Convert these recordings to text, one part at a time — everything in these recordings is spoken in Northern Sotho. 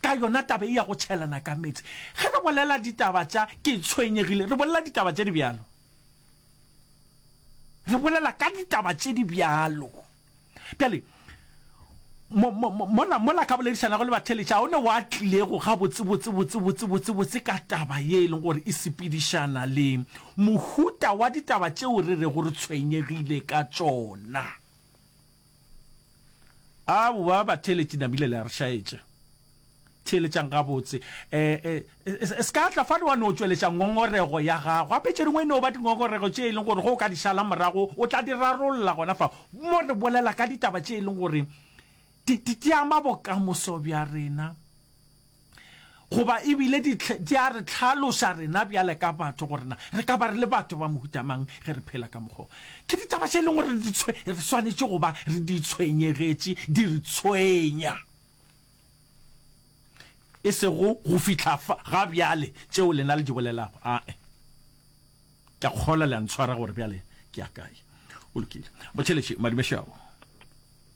Ka yona taba ye ya go tšhelana ka meetse, ge re bolela ditaba tša ke tshwenyegile, re bolela ditaba tše di bjalo. Re bolela ka ditaba tše di bjalo. Bjale, mo, mo, mo, mola, mola ka boledišanago le batheeletša, ga o ne wa tlilego gabotse, botse, botse, botse, botse, botse ka taba ye e leng gore e sepedišana le mohuta wa ditaba tšeo re rego re tshwenyegile ka tšona. Aowa, batheeletši nabile le a re šaetša. Theeletšang gabotse. E, e, e, se ka tla fano wa no tšweletša ngongorego ya gago. Gape tše dingwe e no ba dingongorego tše e leng gore ge o ka di šala morago o tla di rarolla gona fa. Mo re bolela ka ditaba tše e leng gore di, di, di ama bokamoso bja rena. Goba e bile di, di a re tlhaloša rena bjale ka batho gore na re ka ba re le batho ba mohuta mang ge re phela ka mokgwa o. Ke ditaba tše e leng gore di tshwe, re swanetše go ba re di tshwenyegetše, di re tshwenya. E sego go fihla fa, ga bjale, tšeo lena le di bolelago. Ae. Ke a kgolwa le a ntshwara gore bjale ke ya kae. O lokile. Motšheletše, madumešago.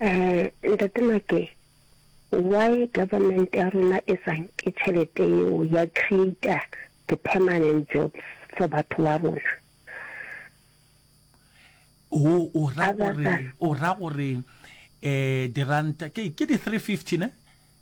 Uh, Ntate Make, why government ya rona e sa nke tšhelete yeo ya creator the permanent jobs for batho ba rona? O o ra gore o ra gore eh diranta ke ke di 350 ne?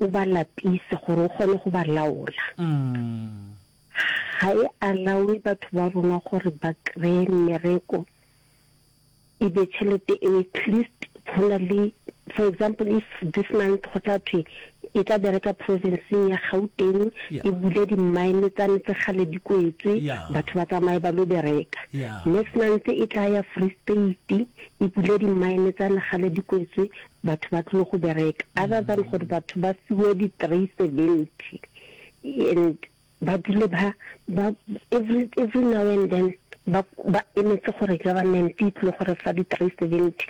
O ba lapise gore o kgone go ba laola. Ga e alawe batho ba rona gore ba kry-e mmereko e be tšhelete eo at least go na le for example if this month go tla thwe e tla bereka provinceng ya gauteng e bule di-mine tsa ntse gale di kwetswe batho ba tsamaye ba lo bereka next month e tla ya free state e bule di-mine tsa legale di kwetswe batho ba tlile go bereka other than gore batho ba fiwe di three seventy and ba dule ba ba every every now and then ba ba emetse gore government e tlile gore fa di three seventy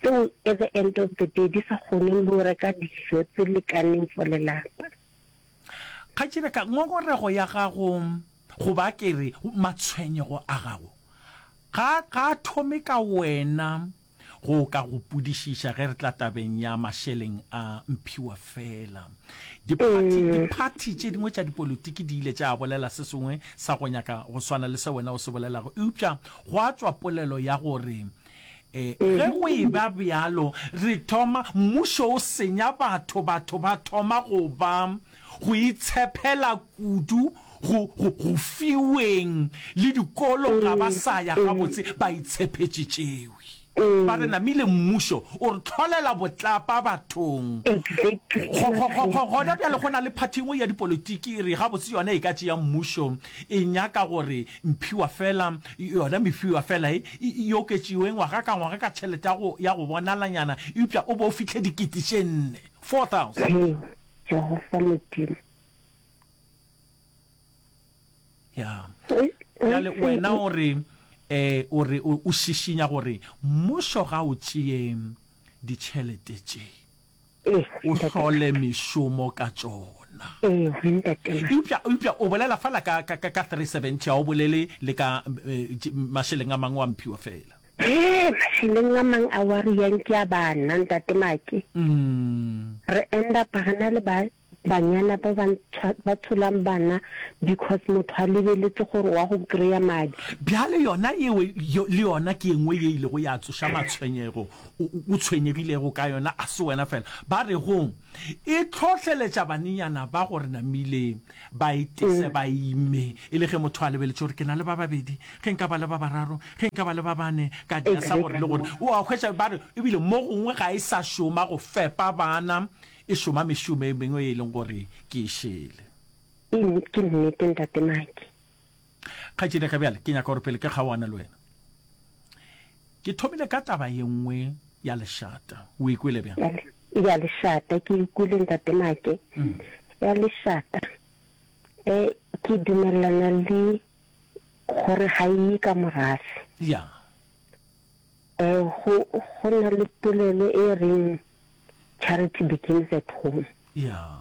tseo at the end of the day di sa kgone le go reka dijo tse lekaneng for lelapa Kgatšebeka, ngongorego ya gago goba ke re matshwenyego a gago ga ga a thome ka wena. Go ka go pudišiša ge re tla tabeng ya mašeleng a mphiwa fela. Diphathi, diphathi tše dingwe tša dipolitiki di ile tša bolela se sengwe sa go nyaka go swana le se wena o se bolelago, eupša gwa tšwa polelo ya gore, Ge go eba bjalo, re thoma, mmušo o senya batho, batho ba thoma go ba go itshephela kudu go, go, go fiweng le dikolo, ga ba sa ya gabotse, ba itshephetše tšewi. Ba re namile mmušo o re hlolela botlapa bathong. Go, go, go, go, gona bjale go na le phathi engwe ya dipolotiki e re gabotse yona e ka tšea mmušo, e nyaka gore mphiwa fela, yona mefiwa fela e, e, e oketšiwe ngwaga ka ngwaga ka tšhelete ya go, ya go bonalanyana, eupša o bo o fihle dikete tše nne, 4,000. Jehofa Modimo. Ya. Bjale wena o re eh o re o šišinya gore mmušo ga o tšee ditšhelete tše o hlole mešomo ka tšona eupša eupša o bolela fela ka ka ka 370 ga o bolele le ka eh, mašeleng a mangwe wa mphiwa fela Hee, mašeleng a mang a wari ya nki a banna, Ntate Maki, re endapa re na le ba banyana ba ba ntshwa, ba tsholang bana because motho a lebeletše gore wa go kry-a madi. Bjale yona yeo yo, le yona ke e nngwe ye e ilego ya tsoša matshwenyego o, o, o tshwenyegilego ka yona. A se wena feela. Ba re go e hlohleletša banenyana ba gore namile Ba itese ba ime, e le ge motho a lebeletše gore ke na le ba babedi, ge nka ba le ba bararo, ge nka ba le ba bane, ka di asa gore le gore. O a hwetša? Ba re, E bile mo gongwe ga e sa šoma go fepa bana, e šoma mešomo e mengwe ye e leng gore ke e šele. Ke nnete, Ntate Maki. Kgaetšedi, ge bjale ke nyaka gore pele ke kgaoana le wena, ke thomile ka taba ye nngwe ya lešata. O e kwele bjang? Ya lešata, ke e kwele, Ntate Make. Ya lešata, e, ke dumelelana le gore ga e ye ka morase. Ya. E, go, go na le polelo e reng, Charity begins at home. Ya.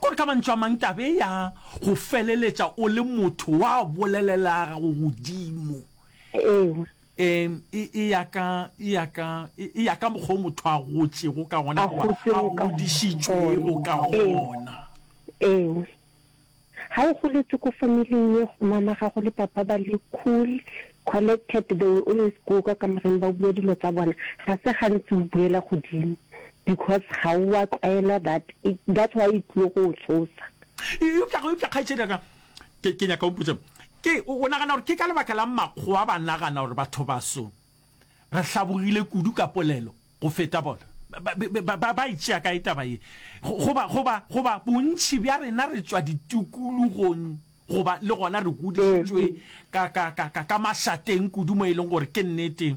Gore ka mantšu a mang taba e ya go feleletša o le motho wa bolelelega go godimo Ewa. e, e, e ya ka, e ya ka, e, e ya ka mokgwa o motho a gotšego ka gona A goba a gotšego ka godišitšwego ka gona. Ee. gona. Ewa. Ga o goletše ko familing ye go mama gago le papa ba le cool, collected, they will always go ka kamoreng ba bue dilo tsa bona, ga se gantsi o buela godimo. Because ga o a tlwaela that that's why e tlile go o tsosa. Eupša go eupša kgaetšedi ya ka ke ke nyaka o mpotše ke o nagana gore ke ka lebaka la makgowa ba nagana gore batho baso re hlabogile kudu ka polelo go feta bona ba ba ba e tšea kae taba ye goba goba goba bontši bja rena re tšwa ditukulugong goba le gona re godišitšwe ka ka ka ka ka mašateng kudu mo e leng gore ke nnete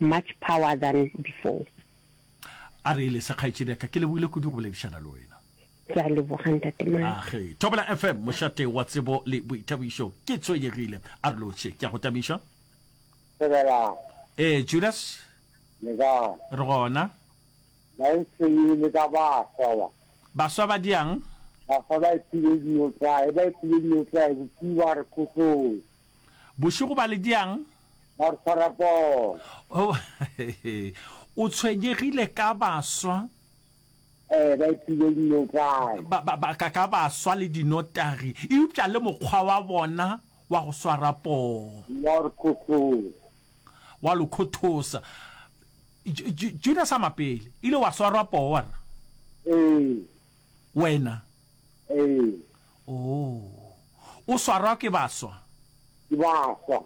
much power than before. A re ele se kgaetšedi ya ka, ke lebohile kudu go boledišana le wena. Ke a leboga ntate Maka. Age, Thobela FM, mošate wa tsebo le boithabišo. Ke tshwenyegile, a re lotšhe. Ke a go tamiša. Thebelang. Ee, Judas. Le kae? Re gona. Ba e tshwenyegile ka baswa ba. Baswa ba diang? Baswa ba e phile dilo tlae, ba e phile dilo tlae, bophiwa re khosong. Bošego ba le diang? Marathon. O tshwenyegile ka baswa? Eh, ba ipile dinokwane. Ba, ba, ba, ka, ka baswa le dinotagi, eupša le mokgwa wa bona wa go swara poo. Wa re khothosa. Wa lo khothosa. Ju- Ju- Judas a mapele, ile wa swarwa poo wa re? Ee, Wena. ee. Oh. O swarwa ke baswa? Ke baswa.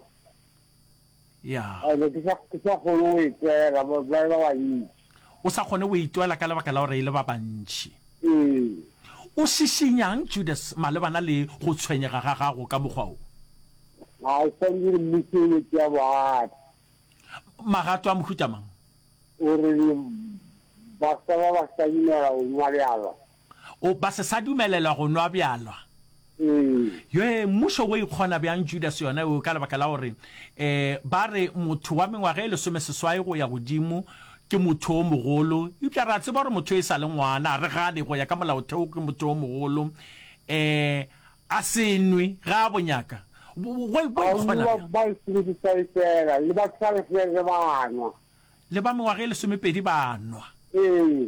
Ya. I be ke sa, ke sa kgone go itwela, ba, ba e ba bantši. O sa kgone go itwela ka lebaka la gore e le ba bantši. Ee. O šišinyang, Judas, malebana le go tshwenyega ga gago ka mokgwa wo? A o swanetše gore mmušo o yo tšea bogato. Magato a mohuta mang? O re le baswa ba ba sa dumela go nwa bjala. O, ba se sa dumelelwa go nwa bjalwa. Yoe, mmušo wo ikgona bjang Judase yona eo, ka lebaka la gore e, ba re, motho wa mengwaga e lesomeseswai go ya godimo ke motho o mogolo, eupša re a tseba gore motho e sa le ngwana, a re gane, go ya ka Molaotheo, ke motho o mogolo, e, a se nwe, ge a bo nyaka. Bo, bo, bo ikgona Baruwa bjang? ba lesomeseswai feela, le ba twelve feela ba a nwa. Le ba mengwaga e lesomepedi ba a nwa. Ee.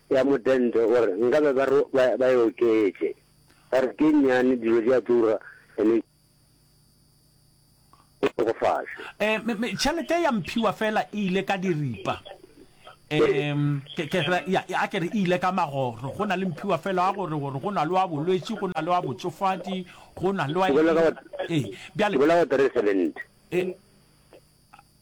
ya modente o re nkabe ba re ba, ba e oketše. Ba re ke nnyane, dilo di a tura, ene ke tokofase. Eh, me, me, tšhelete ya mphiwa fela e ile ka diripa. Um, ke, ke re, ya, ya, a ke re e ile ka magoro. Go na le mphiwa fela wa gore, gore go na le wa bolwetši, go na le wa botšofadi, go na le wa Ke bolela ka eng. wa, Ee, ke bjale, bolela ka wa three seventy. eh,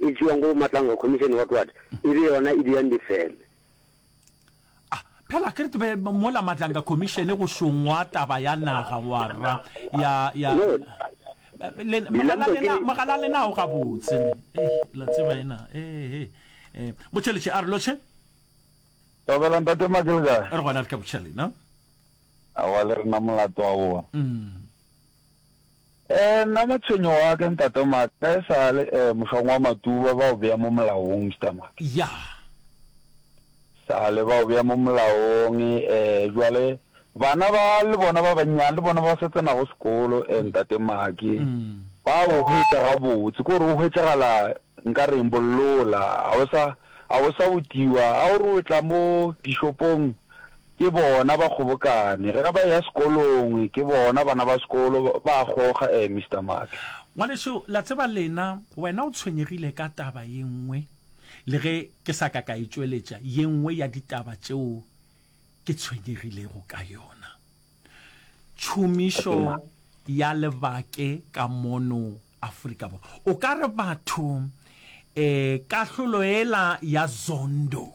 e tšewago go Matlangwa Commission wa Twat e be yona e dirang difeme. A phela ke re ke be mola Matlangwa Commission go šongwa taba ya naga ngwarra ya ya No, le mogala Dilambo ke lena le- mogala lena o gabotse ne eh la tseba ena eh eh eh botšheletše a re lotšhe Tobela ntate Maki le kae? re gona re ka botšhelena Awa le rena molato wa bona. mm Ee, nna matshwenyo wa ke, Ntate Mark, ka e sa le, ee, mohlong wa Matuba, ba o bea mo molaong, Mister Mark. Ya. Sa le ba o bea mo molaong, ee, jwale, bana ba, le bona ba bannyane, le bona ba sa tsenago sekolo, ee, Ntate Mark, ba o hwetša gabotse, ke gore o hwetšagala nka reng, bollola, ga o sa, ga o sa otiwa, ga o re o tla mo dishopong, Ke bona ba kgobokane. Ge ba eya sekolong, ke bona bana ba sekolo ba a goga, eh, Mister Max? Ngwanešu, la tseba lena, wena o tshwenyegile ka taba ye nngwe, le ge ke sa ka ka e tšweletša, ye nngwe ya ditaba tšeo ke tshwenyegilego ka yona. Tšhomišo ya lebake ka mono Afrika Borwa. O ka re batho, eh, kahlolo yela ya Zondo,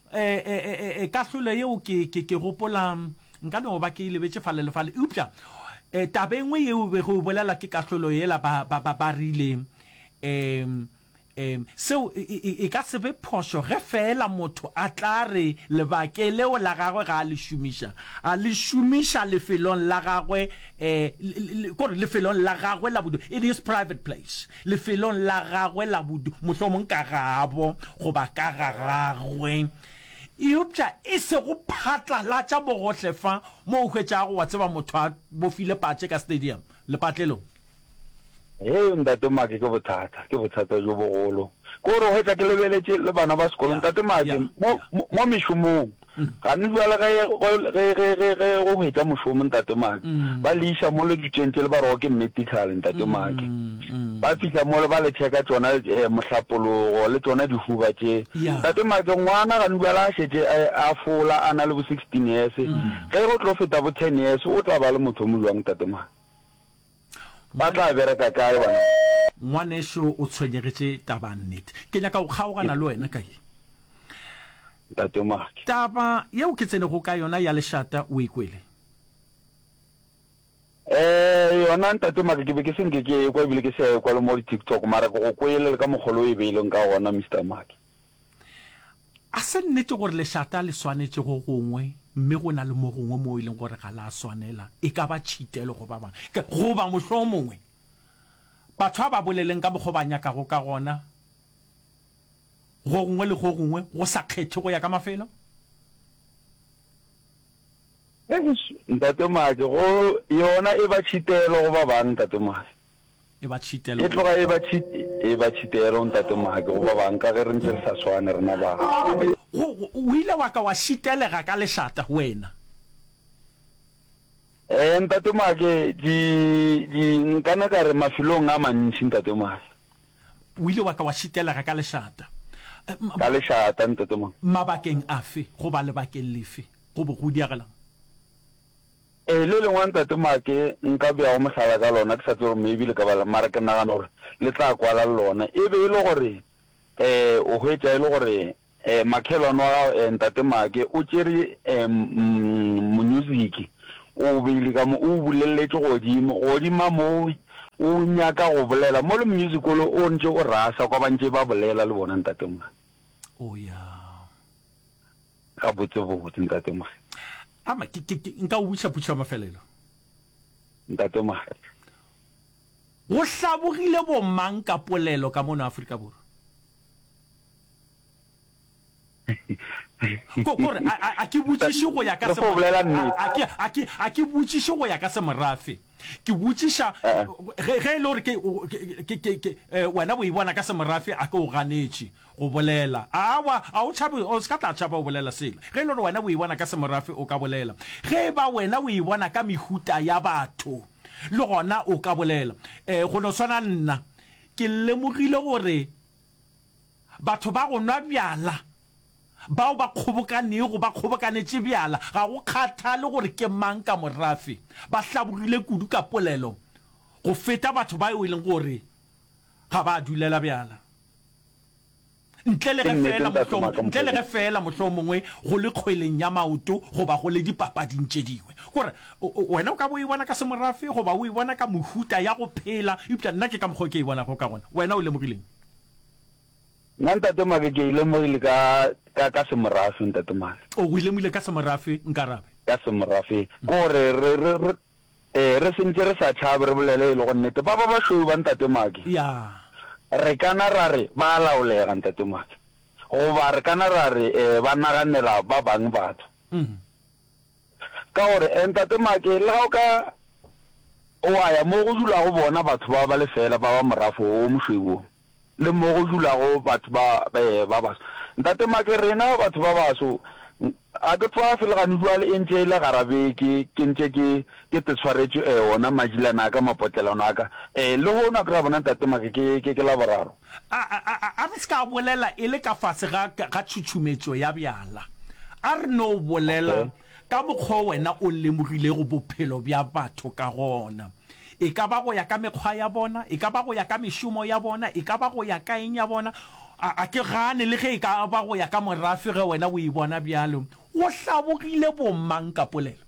E, e, e, e, e kahlolo yeo ke, ke, ke gopola nka no ba ke lebetše fale le fale. Eupša e, taba e nngwe yeo bego e bolela ke kahlolo yela ba, ba, ba, ba rile, e, e, seo e, e, e ka se be phošo ge feela motho a tla re lebake leo la gagwe ga a le šomiša, a le šomiša lefelong la gagwe, e, le, le, le, kore lefelong la gagwe la bodulo, in his private place. Lefelong la gagwe la bodu, mohlomong ka gabo goba ka ga gagwe, eupša e se go phatlalatša bogohle fa mo o hwetšago, wa tseba, motho a bofile patše ka stadium, lepatlelong. Hei, Ntate Maki, ke bothata, ke bothata bjo bogolo. Ke gore o hwetša ke lebeletše le bana ba sekolong, Ntate Maki, mo, mo, mo mešomong. Gane bjale ge, ge, ge, ge, ge go hwetša mošomo, Ntate Maki, ba le iša mole ditšeng tšele, ba re, Oh, ke medical, Ntate Maki. Ba fihla mole, ba le tšheka tšona, eh, mohlapologo, le tšona dihuba tše. Ntate Maki, ngwana gane bjale a šetše a, a fola, a na le bo sixteen years. Ge go tlo feta bo ten years, o tla ba le motho o mojwang, Ntate Maki? Ba tla bereka kae bona? Ngwanešu o tshwenyegetše taba nnet. Ke nyaka go kgaogana le wena ka ye. Ntate Mark. Taba yeo ke tsenego ka yona ya lešata o e kwele? Ee, yona Ntate Mark ke be ke se nke ke ekwa ebile ke se a ekwa le mo di-TikTok mara ke go kwele le ka mokgwa le o e beileng ka gona Mister Mark. A se nnete gore lešata le swanetše go gongwe mme go na le mo gongwe moo e leng gore ga la swanela, e ka ba tšhitelo go ba bangwe? Goba mohlomongwe batho a ba boleleng ka mokgwa o ba nyakago ka gona go gongwe le go gongwe go sa kgethe go ya ka mafelo? Eish, Ntate Maake, go yona e ba tšhitelo go ba bangwe, Ntate Maake. e ba tšhitelo. E tloga e ba tšhit, e ba tšhitelo, Ntate Maki, go ba bang, ka ge re ntše re sa swane, rena ba. Go, go, o ile wa ka wa šitelega ka lešata, wena. Ee, Ntate Maki, di, di, nkana ka re mafelong a mantši, Ntate Maki. O ile wa ka wa šitelega ka lešata. Ka lešata, Ntate Maki. Mabakeng afe, goba lebakeng lefe, go bo go diagelang? Ee, le lengwe Ntate Maake nka beago mohlala ka lona, ke sa tsebe gore maybe le ka bala, mara ke nagana gore le tla kwala le lona. E be e le gore um o hwetša e le gore um makhelwane wa gago um Ntate Maake o tšere um monyuziki o o beile ka mo, o o bulelletše godimo. Godima moo o nyaka go bolela mo le monyuziki ole o ntše o rasa kwa ba ntše ba bolela le bona Ntate Maake. O ya. Ga botse bo botse ntate Mogare. Ama ke ke nka o buša putšo ya mafelelo. Ntate Mogare. Go hlabogile bo mang ka polelo ka mono Afrika Borwa? Ko kore a a ke botšiše go ya ka se a ke a ke botšiše go ya ka semorafe. Ke botšiša ge ge e le gore ke ke ke wena bo e bona ka semorafe a ke o ganetše. Go bolela. Aowa, a o tšhabe, o se ka tla tšhaba go bolela selo. Ge e le gore wena o e bona ka semorafe, o ka bolela. Ge e ba wena o e bona ka mehuta ya batho, le gona o ka bolela. Ee, go no swana nna. Ke lemogile gore batho ba go nwa bjala, bao ba kgobokanego, ba kgobokanetše bjala, ga go kgathale gore ke mang ka morafe, ba hlaborile kudu ka polelo go feta batho bao e leng gore ga ba dulela bjala. Ntle le ge feela mohlomongwe, ntle le ge feela mohlomongwe go le kgweleng ya maoto goba go le dipapading tše dingwe. Ke gore, o, wena o ka bo o e bona ka semorafe goba o e bona ka mohuta ya go phela, eupša nna ke ka mokgwa o ke e bonago ka gona. Wena o lemogileng? Nna, Ntate Maka, ke e lemogile ka, ka, ka semorafe, Ntate Maka. O e lemogile ka semorafe, Nkarabe? Ka semorafe. Ke gore re, re, re, Ee, re se ntše re sa tšhabe, re bolele e lego nnete. Ba ba bašweu ba Ntate Maki. Ya. Re ka na ra re ba a laolega, Ntate Maki. Goba re ka na ra re ba naganela ba bang batho. Ka gore, Ntate Maki, le ga o ka wa ya mo go dulago bona batho bao ba lefeela ba ba morafo wo o mošweu woo, le mo go dulago batho ba ba baso. Ntate Make, rena batho ba baso ga ke tswafe le gane jwale e ntše e le gara beke ke ntše ke ke tetswaretše eh ona majilana a ka mapotlelano a ka eh le hono a kry-a bona Ntate Make ke ke ke laboraro. A a a a re se ka bolela e le ka fase ga ga tšhutšhumetšo ya bjala. A re no bolela Okay. Ka mokgwa wo wena o lemogilego bophelo bja batho ka gona, e ka ba go ya ka mekgwa ya bona, e ka ba go ya ka mešomo ya bona, e ka ba go ya ka eng ya bona, a, a ke gane le ge e ka ba go ya ka morafe ge wena o e bona bjalo, go hlabogile bomang ka polelo?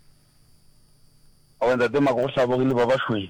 Owe, Ntate Mako, go hlabogile ba bašweu.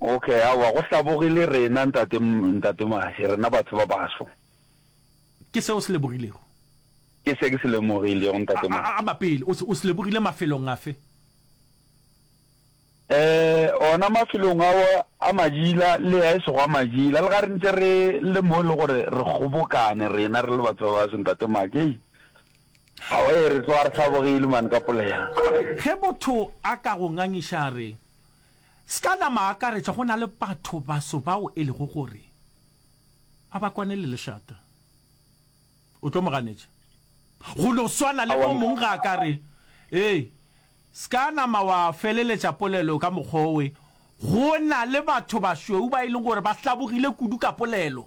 Ok, aowa, go hlaboge le rena, Ntate, Ntate Mahe, rena batho ba baso. Ke se o se lebogilego? Ke se ke se lemogilego, Ntate Mahe. A, a, ama pele. O se, o se lebogile mafelong afe? Eh, ona mafelong ao a majila, le a e sego a majila, le ga re ntse re le mo le gore re kgobokane rena re le batho ba baso, Ntate Mahe. Hei, aowa, ee, re tloga re hlabogile, man, ka polelo. Ge motho a ka go ngangiša a re, Ska nama akaretša go na le batho baso bao e lego gore a ba kwane le lešata. O tlo mo ganetša. Go no swana le mo mong ga a ka re, Ee, ska nama wa feleletša polelo ka mokgwa owe. Go na le batho bašweu ba e leng gore ba hlabogile kudu ka polelo.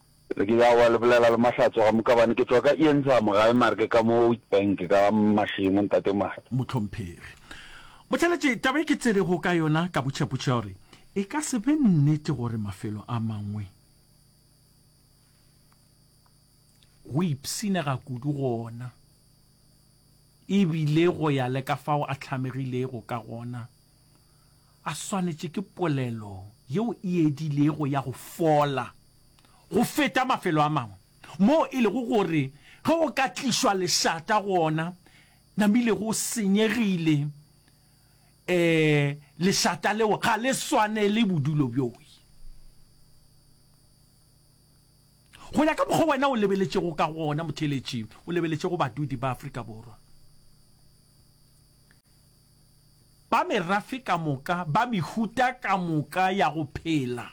Re ke ya wa le bolela le Mahlatso ga Mokabane ke tšwa ka Iensam gae mare ke ka mo Witbank ka Mashemo ntate Mahe. Mohlomphegi. Motšheletše, taba e ke tserego ka yona ka botšhepotšhe gore e ka se be nnete gore mafelo a mangwe go ipshinega kudu gona e bile go ya le ka fao a hlamegilego ka gona a swanetše ke polelo yeo e edilego ya go fola go feta mafelo a mangwe, moo e lego gore ge go ka tlišwa lešata go ona, namile go senyegile, ee, lešata leo ga le swanele bodulo bjoi. Go ya ka mokgwa wena o lebeletšego ka gona, motheeletši, o lebeletše go badudi ba Afrika Borwa. ba merafe ka moka, ba mehuta ka moka ya go phela,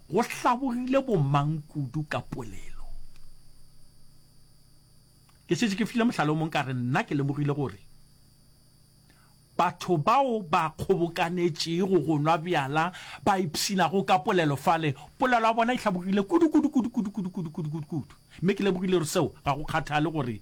go hlabogile bomang kudu ka polelo. Ke šetše ke file mohlala o mong ka re nna ke lemogile gore batho bao ba kgobokanetšego go nwa bjala ba ipshinago ka polelo fale, polelo ya bona e hlabogile kudu kudu kudu kudu kudu kudu kudu kudu kudu, mme ke lemogile gore seo ga go kgathale gore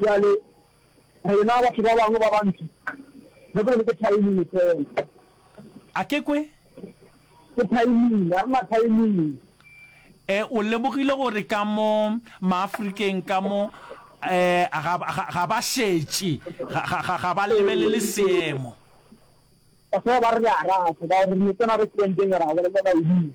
Bjale, rena batho ba bangwe ba bantši, re be re ke thaiming feela. A ke kwe? Ke thaiming, ga re na thaiming. E, o lemogile gore ka mo Maafrikeng ka mo, e, ga, ga, ga ba šetše, ga, ga, ga, ga ba lebelele seemo. Ba se ba re le a rata, ba re re no tsena restauranteng ra bolelela Wayne.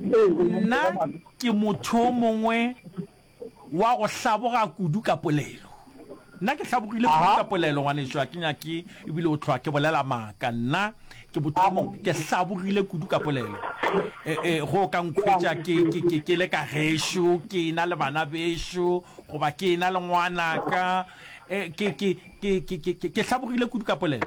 Nna ke motho o mongwe wa go hlaboga kudu ka polelo. Nna ke hlabogile kudu ka polelo, ngwanešu, ga ke nyake ebile go hlwa ke bolela maaka. Nna ke motho o mongwe, ke hlabogile kudu ka polelo. E-e, go ka nkhwetša ke le ka gešo, ke e-na le bana bešo, goba ke e-na le ngwanaka. Ke hlabogile kudu ka polelo.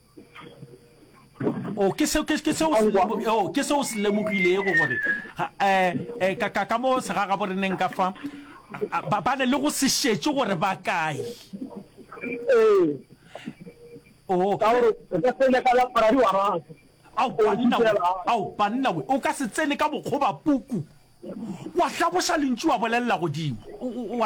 o oh, ke seo ke ke seo o ke seo se lemogile go gore eh, eh ka ka ka mo se ga bo reneng ka fa ba ba le go se shetse gore ba kae eh o oh. ka gore ka tsene ka la para wa ra au banna au banna we o ka se tsene ka bokgoba puku wa hlaboša lentši wa bolelela godimo wa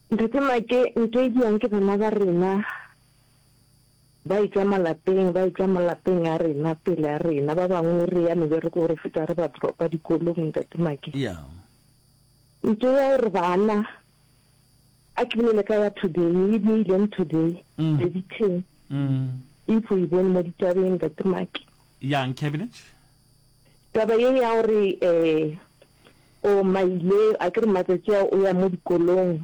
Ntate Make Nkedia ke bana ba rena ba etšwa malapeng, ba etšwa malapeng a rena, pele a rena. Ba bangwe re ya meberekong re feta re ba dropa dikolong, Ntate Make. Yeah. Ntho ya gore bana a ke bolele ka ya today e dirileng today Mm. the detail Mm. if o e bone mo ditabeng, Ntate Make. Yeah, Nkebinet. Taba ye ya gore um o maile a ke re matsatsi ao o ya mo dikolong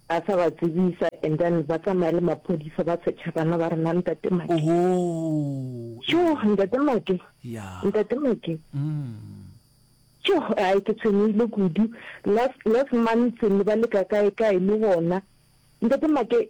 a sa ba tsebisa and then ba tsamaya le maphodisa ba secha bana ba rena ntate make oh, jo yeah. ntate make yeah. ntate make mm. jo ai ke tshwenyehile kudu last last month ne ba leka kae kae le bona ntate make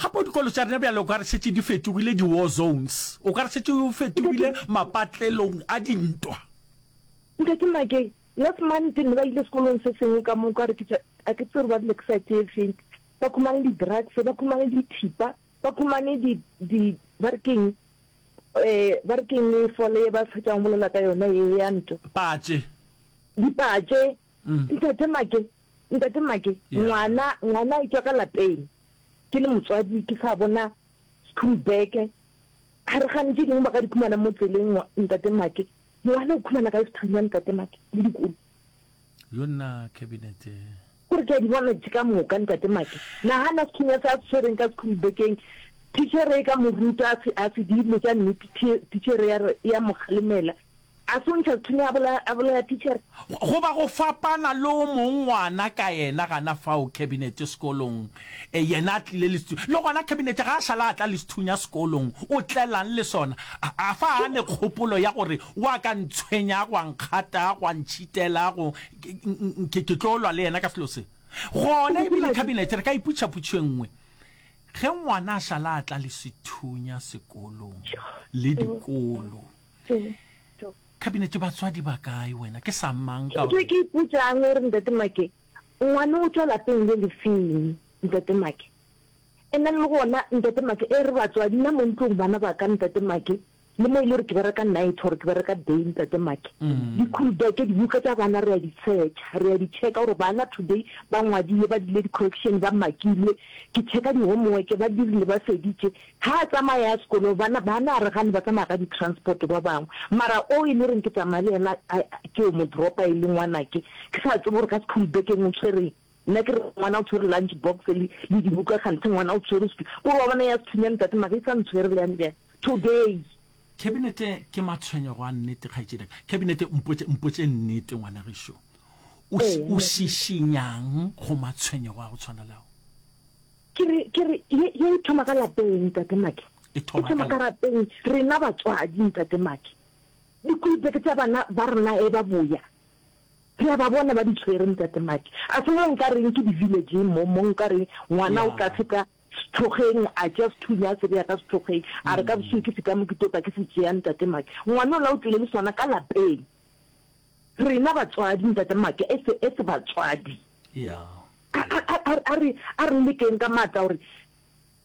Gape o dikolo tša rena bjale o ka re šetše di fetogile di-war zones, o ka re šetše o fetogile mapatlelong a dintwa. Ntate Makeng, last month ne ba ile sekolong se sengwe ka mo, ka re ke tša, a ke tsebe gore ba rile ke side e feng, ba khumane di-drugs, ba khumane dithipa, ba khumane di, di, ba re keng, um ba re keng fole ye ba fetšang go bolela ka yona ye ya ntwa? Patše. Dipatše, Ntate Make, Ntate Make, Yeah. ngwana, ngwana a etswa ka lapeng. Ke le motswadi, ke sa bona school bag. Ha re gane tše dingwe ba ka di khumana mo tseleng, ngwa- Ntate Make. Ngwana o khumana ka school ya Ntate Make, le dikolo. yo nna cabinet eh, Kore ke a di bona tše ka moka, Ntate Make. Nahana sethunya se a se tshwereng ka school bag-eng. Titjhere e ka mo ruta, a se, a se di dilo tša nnete, thi- titjhere ya re, ya mo kgalemela. A se o ntšha lithini a bola, a bolela tichere. Goba go fapana le o mong ngwana ka yena gana fao Khabinete sekolong, e, yena a tlile le sethu-, le gona Khabinete ga a šala a tla le sethunya sekolong, o tlelang le sona? A, a fa a ne kgopolo ya gore wa ka ntshwenya, gwa nkgata, gwa ntšhitela, go, ke, ke, ke tlo lwa le yena ka selo se. Gona e bile Khabinete re ka iputša putšo e nngwe, Ge ngwana a šala a tla le sethunya sekolong, le dikolo, Setho. Cabinet batswadi ba kae wena ke sa mang ka. Setho ke ipotsang gore ntate Make ngwane o tšwa lapeng le le feng ntate Make and then le gona ntate Make e re batswadi na mo ntlong bana ba ka ntate Make le mo e le gore ke bereka night gore ke bereka day ntate Make di-cool beke dibuka tša bana re ya di searcha re ya di checka gore bana today ba ngwadile ba dile di-correction ba makilwe ke checka di-homework ba dirile ba feditše Ha a tsamaya ya sekolo ba na ba na re gane ba tsamaya ka di transport ba bangwe mara o e le reng ke tsamaya le yena a ke o mo dropa e le ngwana ke ke sa tsebe gore ka school bekeng o tshwereng nna ke re ngwana o tshwere lunch box le le dibuka kganthe ngwana o tshwere spi o ba bona ya sethunya ntate mara e sa ntshwere le yang jang today Khabinete ke matshwenyego a nnete kgaetšedi ka. Khabinete mpotše mpotše nnete ngwana gešo. O o šišinyang go matshwenyego a go tshwana le ao? Ke re, ke re, ye, ye e thoma ka lapeng, Ntate Maki. E thoma ka. E thoma ka lapeng, rena batswadi, Ntate Maki. Dikulupeke tša bana ba rena ge ba boya, re a ba bona ba di tshwere, Ntate Maki. A se mo nka reng ke di-village-eng mo, mo nka reng ngwana o ka feta sethokgeng, a tšea sethunya a se bea ka sethokgeng, a re ka bosiu ke feta mo ke tlo tla ke se tšea, Ntate Maki. Ngwana ola o tlile le sona ka lapeng. Rena batswadi, Ntate Make, as, as batswadi, a, a, a, a, a re, a re lekeng ka matla gore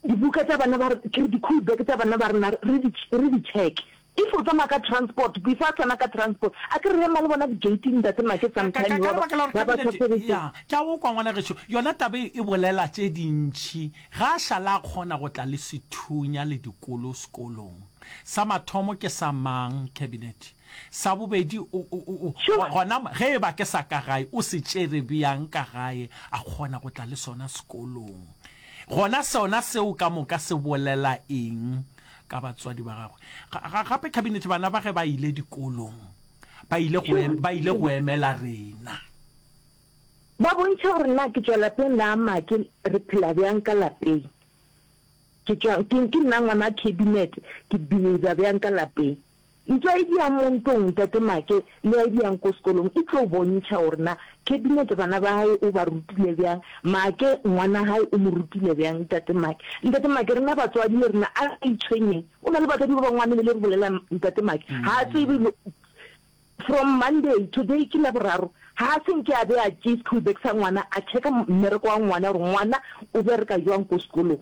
dibuka tša bana ba, ke re di-cool bag tša bana ba rena re di, re di check-e. If o tsamaya ka transport, before a tsena ka transport, a ke re ema le bona di-gate-ing, Ntate Make, Ka, ka, ka, sometime ka ba, lebaka la gore ba ba cabinet, tlhotlheletše. ya, ke a go kwa ngwana gešo, yona taba e, e bolela tše dintši. Ga a šala a kgona go tla le sethunya le dikolo sekolong. Sa mathomo ke sa mang, cabinet? Sa bobedi, o, o, o, o, Sure. gona ge e ba ke sa ka gae, o se tšere bjang ka gae, a kgona go tla le sona sekolong? Gona sona seo ka moka se bolela eng ka batswadi ba gagwe? Ga, ga, gape Cabinet, bana ba ge ba ile dikolong, ba ile go, em, ba ile go emela rena. Ba bontšha gore na ke tšwa lapeng la make, re phela bjang ka lapeng. Ke tšwa, ke, ke nna ngwana Cabinet, ke behavior bjang ka lapeng. Ntwa ye di yang mo ntong, Tate Make, le ya e di yang ko sekolong e tlo bontšha gore na Cabinet bana ba hae o ba rutile bjang, Make ngwana hae o mo rutile bjang. Tate Make, Ntate Make, rena batswadi le rena a re itshwenyeng. O na le batswadi ba bangwe a mele le re bolelang. Ntate Make, Ha a tsebe lo From Monday, today ke Laboraro, ha a se nke a beya ke school bag sa ngwana a checka mmereko wa ngwana gore ngwana o bereka jwang ko sekolong.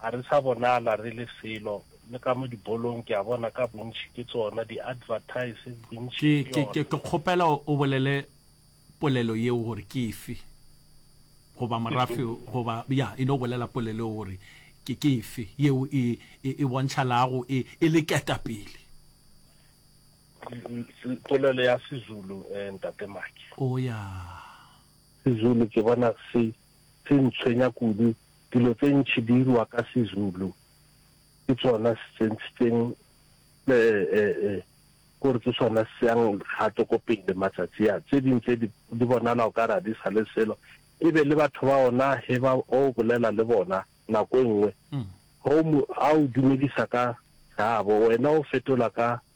Ga re sa bonala re le selo, le ka mo dibolong ke a bona ka bontši ke tsona, di advertise bontši ke Ke, ke, yona. ke kgopela o o bolele polelo yeo gore ke efe, goba morafe, goba, ya, e no bolela polelo yeo gore ke, ke efe, yeo e, e, e bontšhalago e, e le ketapele. Polelo ya Sezulu, eh, Ntate Maki. O ya. Sezulu ke bona se se ntshwenya kudu, dilo tse ntši di irwa ka Sezulu, ke tsona se se ntshitseng kore ke sona se yang gato ko pele matsatsi a. Tse ding tse di bonala o ka re ga di sa le selo, e be le batho ba ona he ba o bolela le bona nako e nngwe ha o dumedisa ka gaabo wena o fetola ka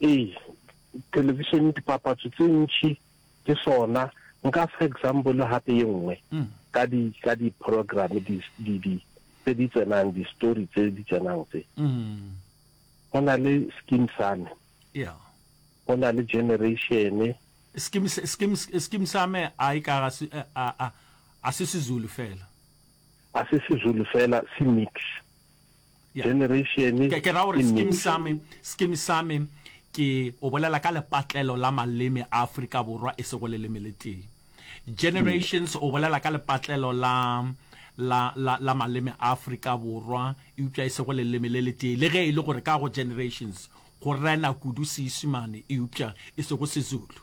Ee, television dipapatso tse ntši ke sona. Nka fa example gape ye nngwe ka di ka di program di di di tse di tsenang di story tse di tsenang tse. Go na le skin same. Yeah. Go na le generation. Skin skin skin same a e ka ga se a a a se se Zulu fela. A se se Zulu fela se mix. Generation Ke, ke ra gore ke skim nation. sa me, skim sa me ke o bolela ka lepatlelo la maleme a Afrika Borwa e sego leleme le tee. Generations o bolela ka lepatlelo la, la, la, la maleme a Afrika Borwa eupša e sego leleme le le tee, le ge e le gore ka go generations go rena kudu Seisimane eupša e sego Sezulu.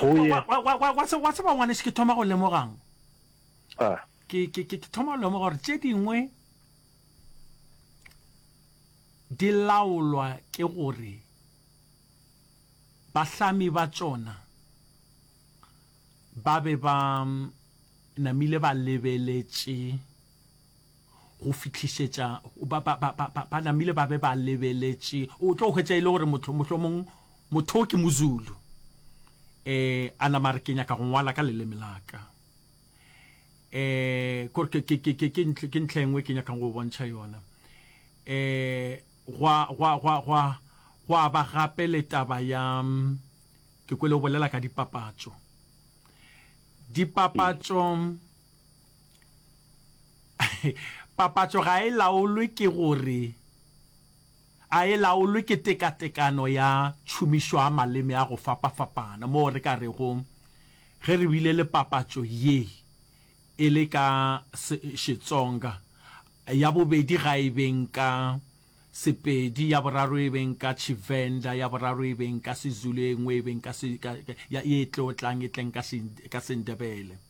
Go ye. Wa- wa- wa- wa- wa tse- wa tseba ngwaneso ke thoma go lemogang a ke ke- ke- ke thoma go lemoga gore tše dingwe di laolwa ke gore bahlami ba tšona ba be ba mm, namile ba lebeletše go fihlišetša ba, ba, ba, ba, ba, ba namile ba be ba lebeletše o tlo hwetša e le gore motho mohlomong motho o ke mozulu eh a nama re ke nyaka go ngwala ka leleme la ka eh kore ke ke ke ke ntle ke ntle engwe ke nyaka go bontšha yona eh gwa gwa gwa gwa gwa ba gape le taba ya ke kwele o bolela ka dipapatso dipapatso Papatšo ga e laolwe ke gore a e laolwe ke tekatekano ya tšhomišo ya maleme a go fapafapana, moo re ka rego ge re bile le papatšo ye e le ka Xitsonga, ya bobedi ga e beng ka Sepedi, ya boraro e beng ka Tshivenda, ya boraro e beng ka Sezulu, e nngwe e beng ka, ye e tlo tlang e tleng ka Sendebele.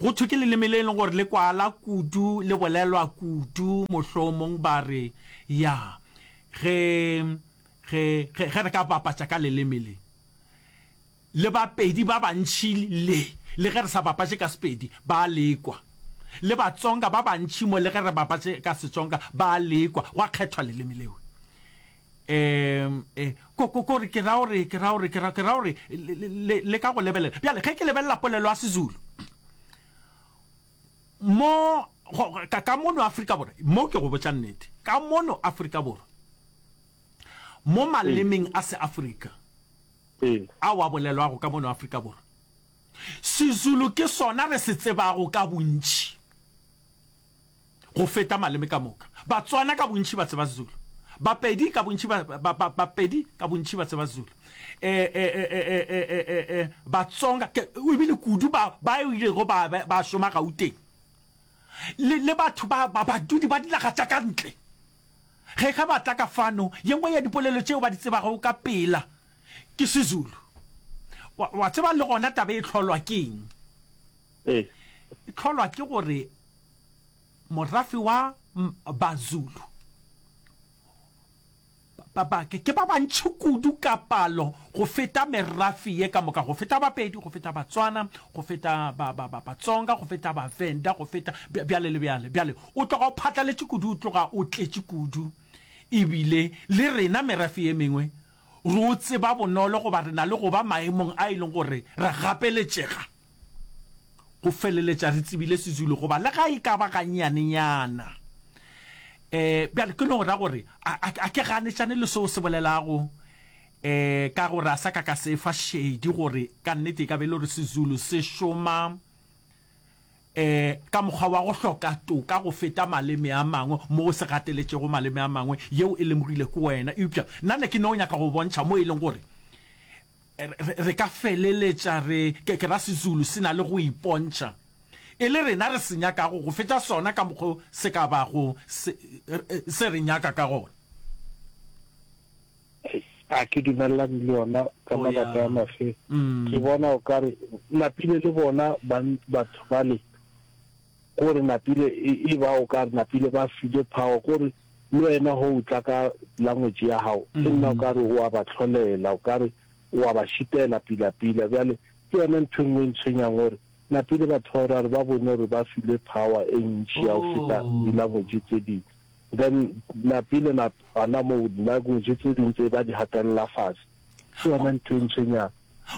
Go thwe ke leleme le e leng gore le kwala kudu, le bolelwa kudu, mohlomong ba re, ya, ge, ge, ge, ge re ka bapatša ka leleme le, le Bapedi ba bantši le, le ge re sa bapatše ka Sepedi, ba a le kwa. Le Batsonga ba bantši mo, le ge re bapatše ka Setsonga, ba a le kwa. Gwa kgethwa leleme leo. Eem, e, ko, ko, ko re, ke ra gore, ke ra gore, ke ra, ke ra gore, le, le, le, le ka go lebelela. Bjale, ge ke lebelela polelo ya Sezulu, mo, go, ka, ka mono Afrika Borwa, mo ke go botša nnete, ka mono Afrika Borwa, mo malemeng a Seafrika, a wa bolelwago ka mono Afrika Borwa, Sezulu ke sona re se tsebago ka bontši. go feta maleme ka moka. Batswana ka bontši ba tseba Zulu. Bapedi ka bontši ba, ba, ba, Bapedi ka bontši ba tseba Zulu. E, e, e, e, e, e, e, e, e, Batsonga, ke, o ebile kudu ba, ba ilego ba, ba, ba šoma Gauteng. Le, le batho ba, ba badudi ba dinaga tša ka ntle. Ge ge ba tla ka fano, ye nngwe ya dipolelo tšeo ba di tsebago ka pela ke Sezulu. Wa, wa tseba le gona taba e hlolwa keng? Ee. E hlolwa ke gore morafe wa Bazulu ke ba bantši kudu ka palo go feta merafe ye ka moka, go feta Bapedi, go feta Batswana, go feta Batsonga, go feta Bavenda, go feta bjale le bjale. Bjale o tloga o phatlaletše kudu, o tloga o tletše kudu ebile le rena merafe ye mengwe Re o tseba bonolo goba re na le go ba maemong a e lego gore ra gapeletšega go feleletša re tsebile Sezulu goba le ga e ka ba gannyanenyana. Um bjale ke no ra gore a ke ganetšane le seo se bolelago um ka gore a sa ka ka se fa šedi gore ka nnete e ka be e le gore Sezulu se šoma ka mokgwa wa go hloka toka go feta maleme a mangwe, mo o se gateletšego maleme a mangwe, yeo e lemogile ke wena. Eupša nna ne ke no nyaka go bontšha mo e leng gore re, re ka feleletša re, ke, ke ra Sezulu se na le go ipontšha e le rena re se nyakago go feta sona ka mokgwa o se ka bago se, se re nyaka ka gona. A ke dumelelane le yona ka mabaka a mafe. Ke bona o kare napile le bona batho bale gore napile e ba o kare napile ba file power gore le wena ho utla ka language ya hao ke nna o kare wa ba tlholela o kare wa ba shitela pila pila bjale ke yona ntho e nngwe ntshwenyang gore napile batho ba rare ba bone gore ba file power e ntši ya go feta di-language tse dingwe then lapi le la bana moo language tse ding tse ba di hatelela fatshe ke yona ntho e ntshwenyang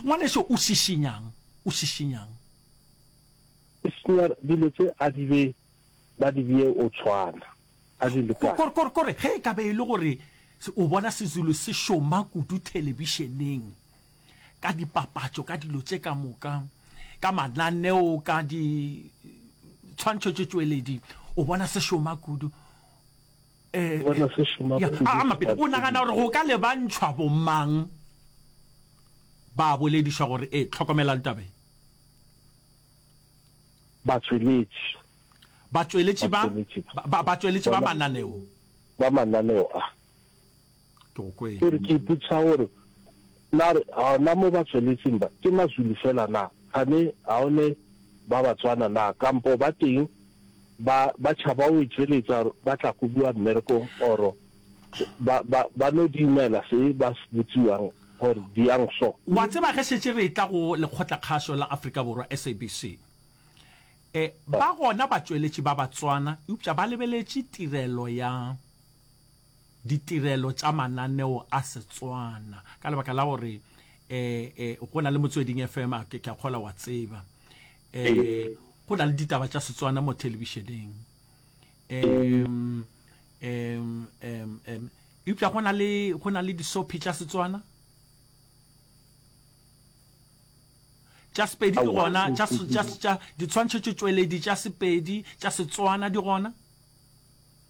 ngwaneso o šišinyang o šišinyang e senya dilo tse a di be ba di bee o tshwana a di lekane kore kore kore ge e ka be e le gore o bona sezulu se šoma kudu thelebišeneng ka dipapatšo, ka dilo tše ka moka, ka mananeo, ka di tshwantšho tše tšweledi, o bona se šoma kudu. Eh, bona se šoma ya, kudu. a, a mapele, o nagana gore go ka lebantšhwa bomang ba boledišwa gore e tlhokomelang tabe batsweletši batsweletši ba Batsweletši ba. ba- ba- batsweletši ba Bona- mananeo ba mananeo a Ke go kwe. Ke re ke ipotšiša gore na re gona mo ba tsweletšeng ba ke Mazulu fela na, kgane ga o ne ba Batswana na kampo ba teng ba ba tšhaba go itšweletša gore ba tla kobiwa mmerekong or ba ba ba no diumela se ba se botsiwang gore di yang so. Wa tseba ge šetše re etla go Lekgotlakgašo la Afrika Borwa, SABC, e ba gona batšweletši ba Batswana eupša ba lebeletše tirelo ya ditirelo tša mananeo a Setswana ka lebaka la gore go na le Motsweding FM, a ke a kgola wa tseba go na le ditaba tša Setswana mo thelebišeneng eupša go na le go na le disophi tša Setswana tša Sepedi di gona ditshwantšho tšweledi tša Sepedi tša Setswana di gona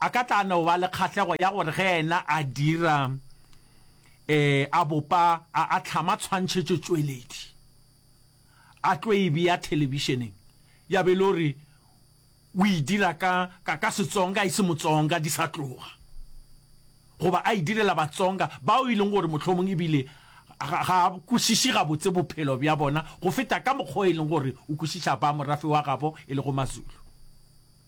A ka tla no ba le kgahlego ya gore ge yena a dira, ee, a bopa, a, a hlama tshwantšhetšotšweledi, a tlo e bea thelebišeneng, ya be e le gore o e dira ka, ka, ka Setsonga, e se Motsonga, di sa tloga, goba a e direla Batsonga bao e leng gore mohlomong e bile ga, ga a kwešiše gabotse bophelo bja bona go feta ka mokgwa o e leng gore o kwešiša ba morafe wa gabo e lego Mazulu.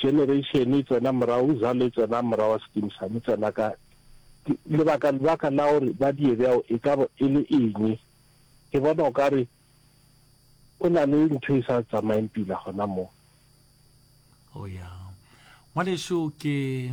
generation e tsena morago uzalo e tsena morago wa skin sa mo tsena ka lebaka lebaka la gore ba die bjao e ka bo e le eng ke bona o ka re o na le ntho e sa tsamaeng pila gona mo o oh, ya ngwaneso ke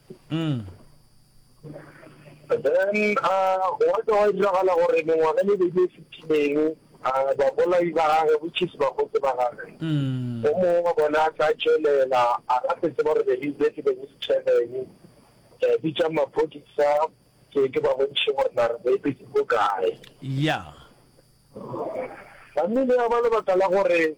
Then gwa tla gwa diragala gore mengwaga le beke e fetileng babolai ba gage, which is bakgotse ba gage, o mongwe wa bona a tla tšwelela a ga se tseba gore believe be ke beng se tšheleng bitsang maphodisa ke ke ba bontšhe gore na re boepetse ko kae. Family ya ba lebaka la gore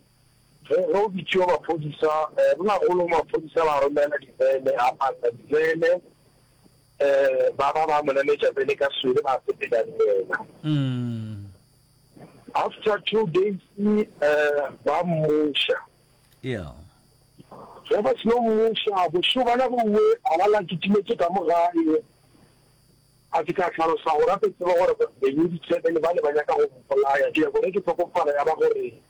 Ge go bitšiwa maphodisa, bonagolo maphodisa ba romela dibene, a pata dibene, ba ba ba mo nametša pele ka swele, ba sepela le yena. After two days ba mmuša. Ge ba seno mmuša, bošego bana bowe a ba la kitimetše ka mo gae, a ke ka hlalosa gore a ke tsebe gore Benny Ditsebele ba ne ba nyaka go mpolaya, ke ya gore ke hlokofala ya ba gore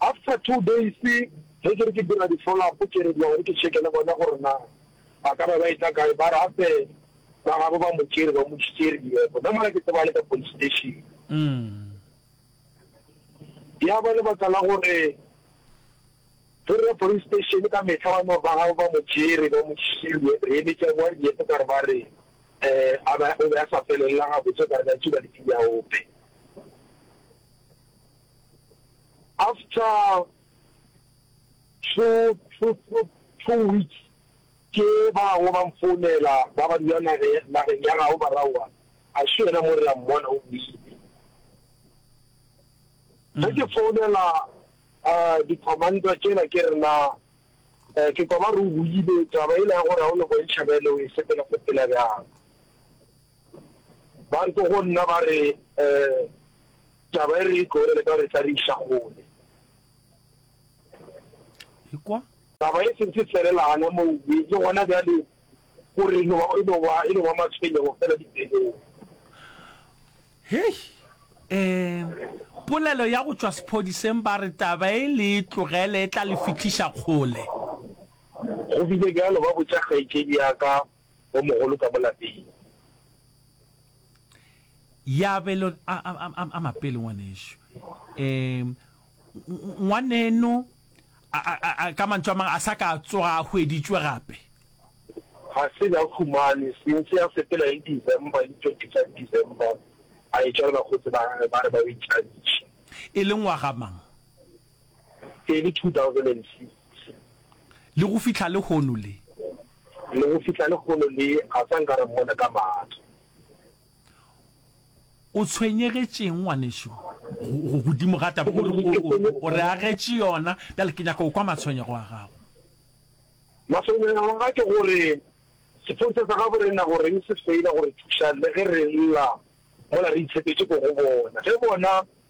After two days ge ke re ke dira di follow up ke re ke ya gore ke check le bona gore na ba ka ba ba etla kae ba re gape ba gabo ba mo tšere ba mo tšhitše riepo nna mola ke tseba le ka police station. Ya ba lebaka la gore ge re ya police station ka mehla ba no ba gabo ba mo tšere ba mo tšhitše re emetša bowa riepo ka re ba re um a ba o be a sa felelela gabotse ka re ba tšuba le tsebi ya ope. After two, two, two, two weeks ke ba bangwe ba mfounela ba ba dula nage, nageng ya gabo Baraua, a še yena mo re a mmona o boile. Ge ke founela uh, di-commander tšela ke re na uh, ke kwa ba re o boile, taba e la ya gore ga o no bontšha bjale o e sepela sepela bjang. Ba tlo go nna ba re, Taba e re e tlogele ka re tla re iša kgole. Ekwa! Taba e sentše felela gana moo, le gona bjale o re e no ba, e no ba, e no ba matshwenyego feela dipelong. Hei! Polelo ya go tšwa sephodiseng ba re taba e le e tlogele e tla le fihliša kgole. Go bile bjalo, ba botša kgaetšedi ya ka o mogolo ka mo lapeng. Ya be le a, a, a, a mapele ngwanešu. E, ngwaneno, a, a, a, a, ka mantšu a mang, a sa ka a tsoga a hweditšwe gape. Ga se na humane, sentse a sepela le December, le tšo tisa December, a etšwa le bakgotsi ba gagwe ba re ba o itšhantšhe. E le ngwaga mang? Tsebi 2006. Le go fihla lehono le. Le go fihla lehono le, ga sa nka ra mmona ka mahlo. O tshwenyegetše'ng, ngwanešu, go, godimo ga taba gore o, o, o re agetše yona? Bjale ke nyaka go kwa matshwenyego a gago. Matshwenyego a ka ke gore sephorisa sa gabo re na go reng se feila go re thuša le ge re lla mola re itshepetše ko go bona. Ge bona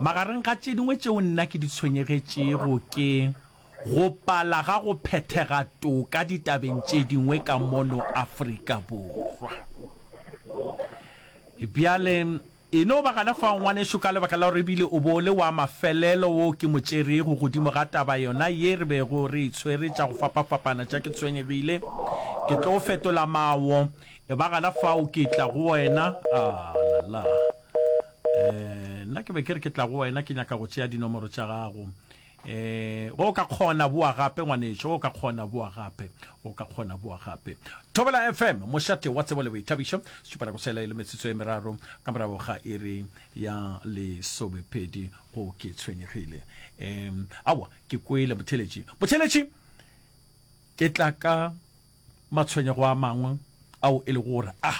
Magareng ga tše dingwe tšeo nna ke di tshwenyegetšego ke go pala ga go phethega toka ditabeng tše dingwe ka mono Afrika Borwa. Bjale, e no ba gana fao, ngwanešu, ka lebaka la gore e bile o bo o le wa mafelelo wo ke mo tšerego godimo ga taba yona ye re bego re e tshwere, tša go fapafapana tša, ke tshwenyegile ke tlo fetola mawo, e ba gana fao ke tla go wena. Ah, la la! Eh, nna ke be ke re ke tla go wena ke nyaka go tšea dinomoro tša gago. Eh, go ka kgona boa gape ngwanetšo, go ka kgona boa gape, go ka kgona boa gape. Thobela FM, mošate wa tsebo le boithabišo, setšupana go sela e le metsotso e meraro ka morago ga iri ya lesomepedi go ke tshwenyegile. Eh, awa, ke kwele motheletši. Motheletši, ke tla ka Matshwenyego a mangwe ao e lego gore a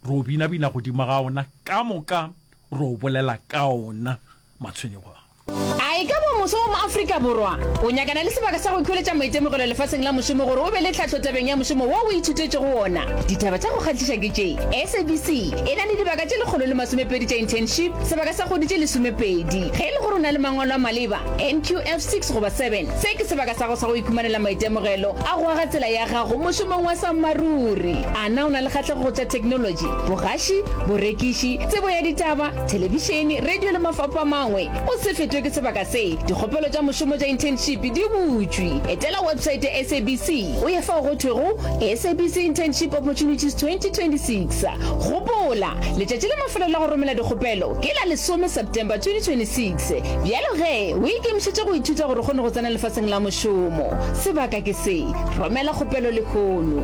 re o binabina godimo ga ona, ka moka re o bolela ka ona matshwenyego ao. A e ka ba moswa wa mo-Afrika Borwa o nyakana le sebaka sa go ikhweletša maitemogelo lefaseng la mošomo gore o be le tlhahlo tabeng ya mošomo wo o ithutetšego wona? Ditaba tša go kgahliša ke tše, SABC e na le dibaka tše lekgolo le masomepedi tša internship sebaka sa kgwedi tše lesomepedi. Ge e le gore o na le mangwalo a maleba, NQF 6 goba 7. Se ke sebaka sa go sa go ikhumanela maitemogelo a go aga tsela ya gago mošomong wa sammaruri. A na o na le kgatlego go tša theknolotši, bogaši, borekiši, tsebo ya ditaba, thelebišene, radio le mafapho a mangwe? O se fetwe ke sebaka se. Dikgopelo tša mošomo tša internship di butšwe. Etela website ya SABC o ye fao go thwego SABC Internship Opportunities 2026. Gopola, letšatši la mafelelo la go romela dikgopelo ke la lesome September 2026. Se, bjalo ge o ikemišetše go ithuta gore o kgone go tsena lefaseng la mošomo. Sebaka ke se, romela kgopelo lehono.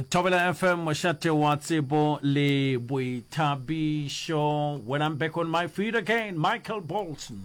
Thobela FM mošate wa tsebo le boithabišo When I'm back on my feet again Michael Bolton